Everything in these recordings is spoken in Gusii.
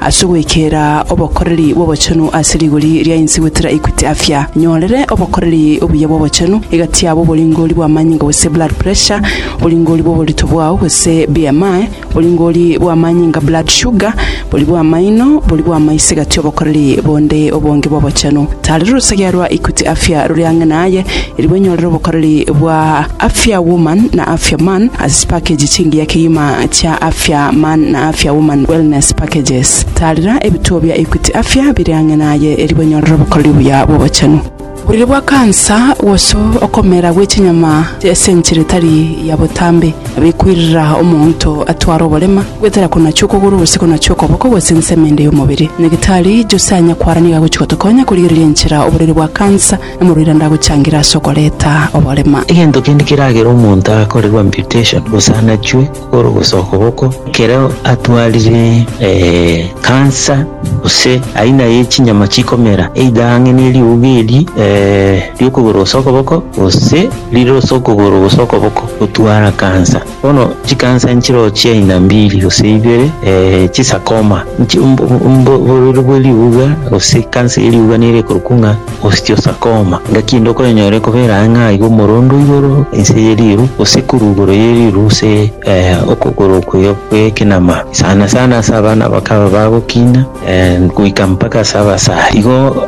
Ase goikera obokoreri bw'obochenu ase rigori ria inse gwetera Equity Afya, nyorere obokoreri obuya bw'obochenu egati yabo oboringori bw'amanyinga gose blood pressure, oboringori bw'oborito bwao gose BMI, oboringori bw'amanyinga blood sugar, bori bw'amaino, bori bw'amaiso egati y'obokoreri bonde obonge bw'obochenu. Tarera orosegea rwa Equity Afya rore ang'e naye, Erio banyorire obokoreri bwa Afya Woman na Afya Man ase chipakeji chingiya kegima chia Afya Man na Afya Woman Wellness Packages. Taarera ebituo bia Equity Afya bire ang'e naye erio banyorere obokoreri buya bw'obochenu. Oborwaire bwa kansa gose okomera gwe chinyama ase enchera etari ya botambe nabekoirera omonto atware oborema, goetera konachwa okogoro gose konachwa okoboko gose ensemo ende y'omobere. Nyagetari Jose Anyakwara nigo agochia gotokonya korigereria enchera oborwaire bwa kansa. Omorwaire ndagochangira ase okoreta oborema. Egento kende keragere omonto akorerwe amputation gose anachwe kogoro gose okoboko, ekero atwarire cancer gose aina ye chinyama chikomera either ang'e ne riuga eri ri'okogoro gose okoboko gose rire ase okogoro gose okoboko gotwara cancer. Bono chikansa nchirochia inambiri gose ibere, eh, chisakoma. Nchi- mbo- mbo- mbo- Oborero bwe riuga gose kansa ye riuga nere ekorokwa ng'a osteosarcoma. Ngaki ende okoyenyora ekobera ang'e ng'a igo omorondo igoro inse ye riru gose korwa igoro ye riru gose, eh, okogoro okwo kw'ekenama. Sana sana ase abana abakaba bagokina. Goika mpaka ase abasare. Igo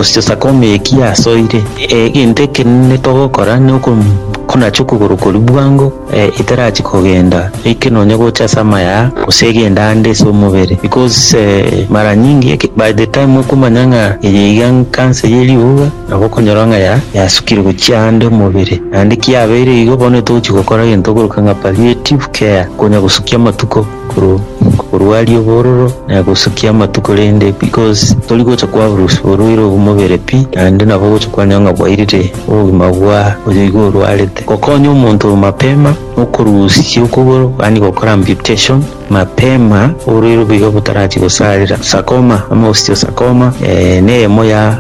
Sakome eki asoire, egento ekenene togokora nekonacha okogoro koria bwango etarachi kogenda eke nonya gocha ase amaya gose egende ande ase omobere because mara nyingi by the time okomanya ng'a eye iga cancer ye riuga nabo okonyora ng'a yasukire gochia ande omobere naende kiabeire igo bono togochi gokora egento okoruka ng'a palliative care konya gosukia amatuko. korwa korwa aria obororo na gosukia amatuko rende because tori gocha kwa bruce orwaire obumobere pi naende nabo ogocha kwanyora ng'a bwairire obogima bwa oyo igo orwarete gokonya omonto oyo mapema okorusia okogoro yaani gokora amputation mapema oborwaire obwo iga botarachi gosarera sarcoma ama osteosarcoma eh, neyemo ya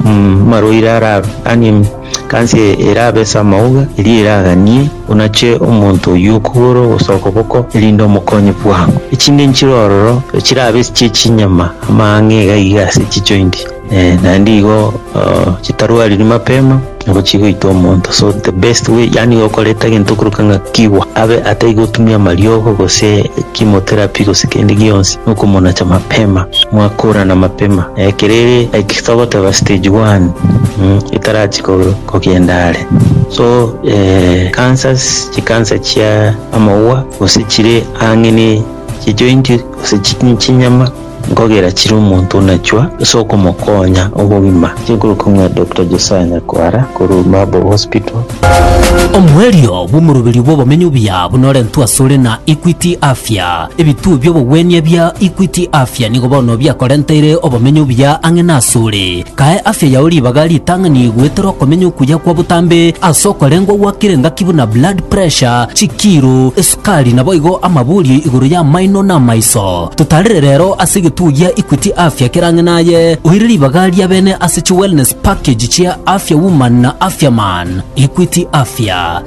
mm, amarwaire ara yaani Kansi eye erabe ase amauga, erio eraganie, onache omonto oyio okogoro gose okoboko, erinde omokonye bwango. Echinde nchire ororo chirabe ase chie chinyama amang'e iga iga ase chijointi, eh, naende igo chitarwariri mapema nabo chigoita omonto. So the best way yaani gokoreta egento okorokana ng'a kigwa abe atai gotumia amariogo gose chemotherapy gose kende gionsi, nokomonacha mapema, mwakorana mapema, ekero ere like. Togoteba stage one etarachi kogenda are so cancers chi cancer chia amagwa gose chire ang'e ne chi joint gose chinyama nkogera chire omonto onachwa ase okomokonya obogima chikoroka ng'a Doctor Josiah Nyakwara korwa Maabo Hospital. Omoerio bw'omoroberio bw'obomenyo buya buna orentwe asore na Equity Afya. Ebituo bi'obogwenia bia Equity Afya nigo bono biakorenteire obomenyo obuya ang'e nasore. Kae afya yao ribaga ritang'ani goetera okomenya okuya kwa botambe ase okorengwa gwakire engaki buna blood pressure, chikiiro, esukari naboigo amaborio igoro y'amaino na amaiso. Totarere rero ase egetuo gia Equity Afya kere ang'e naye, oire ribaga ria bene ase chi wellness package chia Afya Woman na Afya Man. Equity Afya.